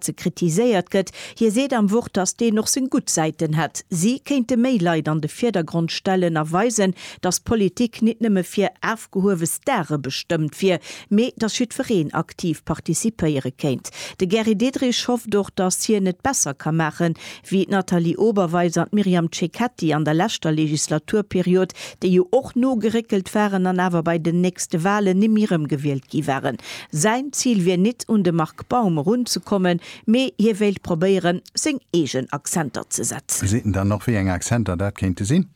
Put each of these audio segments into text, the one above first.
ze kritiséiert gëtt. Hie seet am Wort, datt deen och seng gutt Säiten hätt. Si kéinte méi Leit an de Virdergrond stellen a weisen, datt Politik nit nëmme fir afgehuewe Stare bestëmmt wier, mee datt jiddwereen aktiv participéiere kéint. De Gary Diderich hofft och, datt hien et besser ka maachen, wéi d'Nathalie Oberweis an d'Myriam Cecchetti an der leschter Legislaturperiod, déi jo och nogeréckelt waren an awer bei den nächste Wahlen nimmi erëmgewielt gi waren. Säin Zil wier nit, un de Marc Baum erunzekommen, mee hie wéilt probéieren, seng eegen Accenter ze setzen. Seet en dann och, wéi eng Accenter dat kéinte sinn?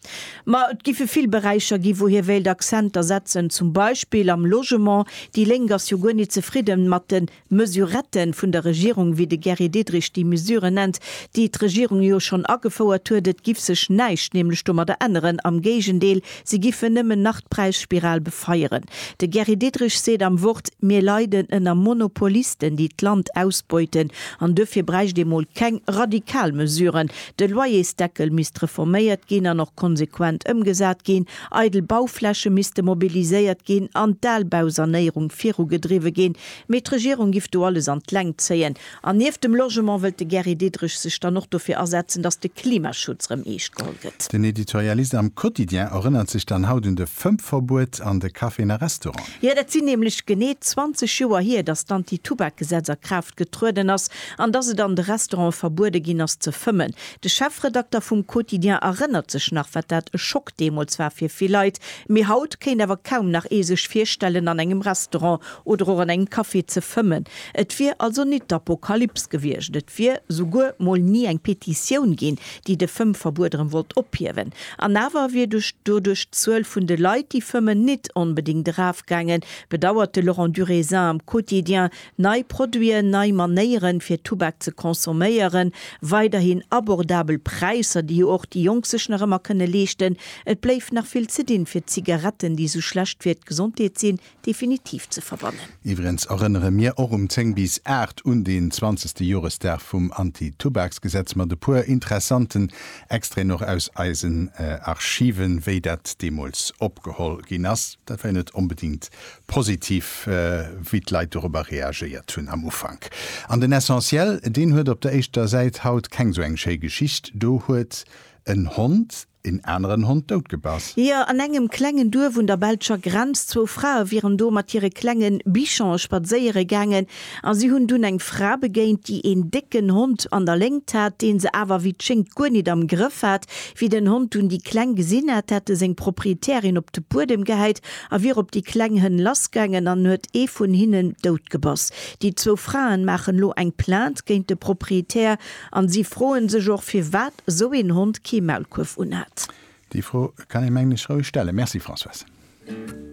Ma et géife vill Beräicher gi wou hie wéilt Accenter setzen, zum Beispill am Logement. Déi Lénk ass jo guer nit zefridden mat de Mesurette vun der Regierung, wéi de Gary Diderich déi Mesure nennt, déi d'Regierung jo schonn agefouert huet. Et giff sech näischt nämlech domadder änneren, am Géigendeel, se giffen nëmmen nach d'Präisspiral befeieren. De Gary Diderich seet am Wort, Mir leiden ënner Monopolisten, déi d'Land ausbeuten, an duerfir bräicht ee mol keng radikal Mesuren. De Loyersdeckel misst reforméiert ginn an och konsequent ëmgesat ginn, eidel Baufläche misste mobiliséiert ginn an d'Albausanéierung virugedriwwe ginn. Mee d'Regierung giff do alles an d'Längt zéien. An nieft dem Logement wëllt de Gary Diderich sech dann och dofir asetzen, datt de Klimaschutz rëm eescht geholl gëtt. Den Editorialist am Quotidien erënnert sech dann haut un de Vëmpverbuet an de Caféen a Restauranten. Jo, dat sinn nämlech genee 20 Joer hier, datt d'Anti-Tubak-Gesetz a Kraaft getrueden ass an datt et an de Restaurante verbuede ginn ass ze fëmmen. De Chefredakter vum Quotidien erënnert sech nach, wat dat e Schock deemools war fir vill Leit. Mee haut kéint awer kaum nach ee sech virstellen, an engem Restaurant Oder och an engem Café ze fëmmen. Et wier also nit d'Apokalyps gewiescht. Et wier souguer mol ni eng Petitioun ginn, déi de Fëmmverbuet erëm wollt ophiewen. An awer wier doduerch d'Zuel vun de Leit, déi fëmmen, nit onbedéngt erafgaangen, bedauert de Laurent Duraisant am Quotidien. Nei Produiten, nei Manéieren, fir Tubak ze consomméieren, weiderhin abordabel Präisser, déi jo och déi Jonk sech nach ëmmer kënne leeschten. Et bléif nach vill ze dinn, fir d'Zigaretten, déi esou schlecht fir d'Gesondheet sinn, definitiv ze verbannen. Iwwregens erënnere mir och um 10 bis 8 un den zwanzegste Joresdag vum Anti-Tubaks-Gesetz mat e puer interessanten Extraiten och aus eisen Archiven, wéi dat deemools opgeholl ginn ass. Dat war jo net onbedéngt positiv, wéi d'Leit dorobber reagéiert hunn am Ufank. An den Essentiel, deen huet op der éischter Säit haut keng sou eng schéi Geschicht. Do huet en Hond. Een aneren Hond dout gebass. Jeer, an engem klengen Duerf un der belscher Grenz. Zwou Frae wieren do mat hire klengen Bichon spadséiere gaangen a si hunn dunn eng Fra begéint, déi een décken Hond an der Léngt hat, deen se awer wéi et schéngt guer nit am Grëff hat. Wéi den Hond dunn déi Kleng gesinn hat, hat e seng Proprietärin op de Buedem gehäit a wier op déi kleng Hënn lassgaangen an huet ee vun hinnen dout gebass. Déi zwou Fraen maachen lo eng Plainte géint de Proprietär. An si froen sech och firwat esou een Hond kee Maulkuerf unhat. Déi Fro kann ee mengen ech roueg stellen. Merci Françoise.